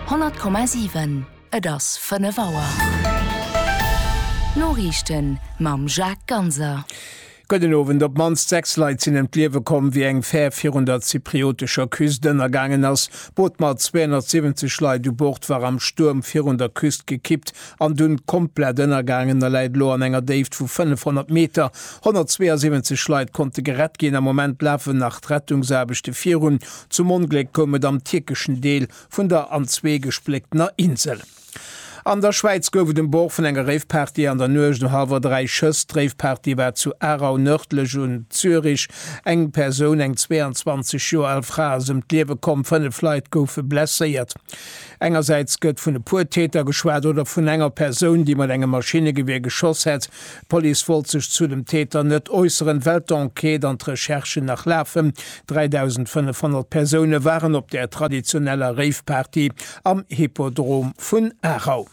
100,7 Et ass 5 Auer. D'Noriichten mam Jacques Ganser. Gudden Owend. Op d'mannst 6 Leit sinn ëm d'Liewe komm, wéi eng Fär virun der zypriotescher Küst ënnergaangen ass. D'Boot mat 270 Leit u Bord war am Stuerm virun der Küst gekippt an dunn komplett ënnergaangen a läit elo an enger Déift vu 500 Meter. 172 Leit konnte gerett ginn. Am Moment lafen nach d'Rettungsaarbechte virun. Zum Ongléck koum et am tierkeschen Deel vun der an zwee gespléctener Insel. An der Schwäiz gouf et um Bord vun enger Raveparty an der Nuecht no hallwer dräi Schëss. D'Raveparty war zu Aarau, nërdlech un Zürich. Eng Persoun, eng 22 Joer al Fra, ass ëm d'Liewe komm, fënnef Leit goufe blesséiert. Engersäits gëtt vun e puer Täter geschwat oder vun enger Persoun, déi mat engem Maschinnegewier geschoss hätt. D'Police wollt sech zu dem Täter net äusseren, well d'Enquête an d'Recherchen nach lafen. 3.500 Persoune waren op der traditioneller Rave-Party am Hippodrom vun Aarau.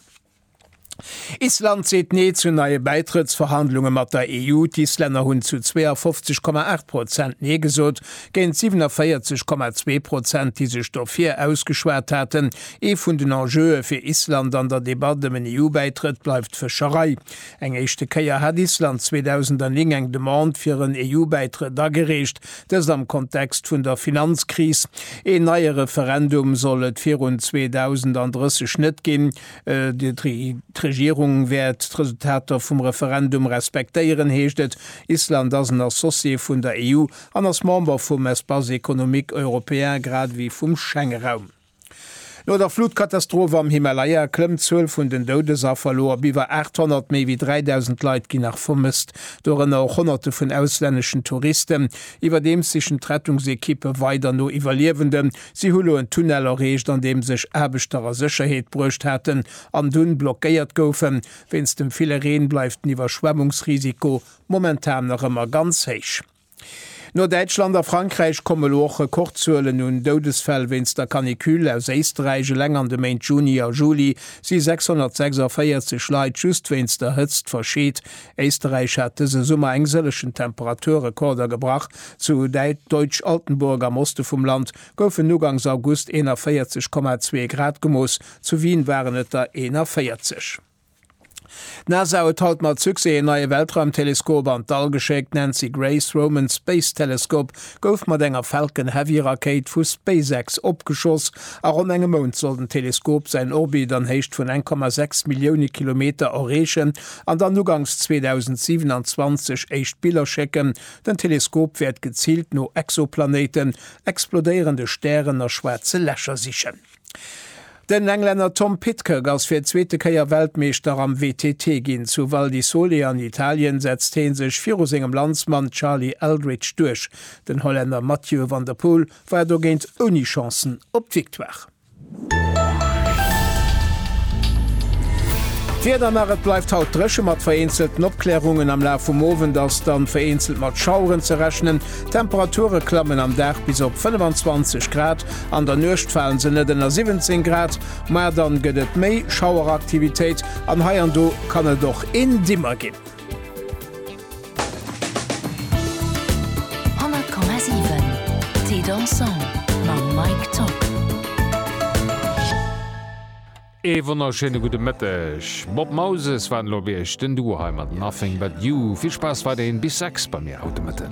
Island seet Nee zu neie Bäitrëttsverhandlunge mat der EU. D'Islänner hunn zu 52,8 Prozent Nee gesot, géint 47,2 Prozent, déi sech dofir ausgeschwat haten. Ee vun den Enjeue fir Island an der Debatt ëm en EU-Bäitrëtt bleift d'Fëscherei. Eng éischte Kéier hat Island 2009 eng Demande fir en EU-Bäitrëtt agereecht, dëst am Kontext vun der Finanzkris. Een neie Referendum soll et virun 2030 net ginn. D'Regierung wäert d'Resultater vum Referendum respektéieren, heescht et. Island ass en Associé vun der EU an ass Member vum Espace économique européen grad ewéi vum Schengeraum. No der Flutkatastroph am Himalaya klëmmt d'Zuel vun den Doudesaffer elo op iwwer 800. Méi wéi 3.000 Leit ginn nach vermësst, dorënner och Honnerte vun auslänneschen Touristen. Iwwerdeems sichen d'Rettungsekippe weider no Iwwerliewenden. Si hu lo en Tunnel erreecht, an deem sech Aarbechter a Sécherheet bruecht haten an dunn blockéiert goufen. Wéinst dem ville Reen bleift den Iwwerschwemmungsrisiko momentan nach ëmmer ganz héich. No Däitschland a Frankräich komme lo och Rekordzuelen un Doudesfäll wéinst der Canicule. Aus Éisterräich eleng an de Méint Juni a Juli si 646 Leit just wéinst der Hëtzt verscheet. Éisterräich hat dëse Summer eng sëllegen Temperaturrekorder gebrach. Zu Deutsch-Altenburg am Oste vum Land goufen ugangs August 41,2 Grad gemooss, zu Wien waren et der 41. D'NASA huet haut mat Succès een neie Weltraumteleskop an d'All geschéckt. Nancy Grace Roman Space Telescope gouf mat enger Falcon Heavy Rakéit vu SpaceX opgeschoss. A ronn engem Mount soll den Teleskop säin Orbit an Héicht vun 1,6 Millioune Kilometer erreechen an dann uganks 2027 éischt Biller schécken. Den Teleskop wäert geziilt no Exoplanéiten, explodéierende Stären a schwaarze Lächer sichen. Den Englänner Tom Pidcock ass fir d'zweete Kéier Weltmeeschter am WTT ginn. Zu Val di Sole an Italien setzt hee sech viru sengem Landsmann Charlie Eldridge duerch. Den Hollänner Mathieu van der Poel war dogéint ouni Chancen op d'Victoire. D'Wieder nach, Et bleift haut dréche mat vereenzelten Opklärungen, am Laf vum Owend ass dann vereenzelt mat Schaueren ze rechnen. D'Temperature klammen am Dag bis op 25 Grad. An der Nuecht falen se net ënner 17 Grad, ma dann gëtt et méi Schaueraktivitéit an hei an do kann et och een Dimmer ginn. Ee wonnerschéine gudde Mëtteg. Bob Moses war elo bei iech, den Duo hei mat Nothing But You. Vill Spaass weiderhin bis 6 bei mir haut de Mëtten.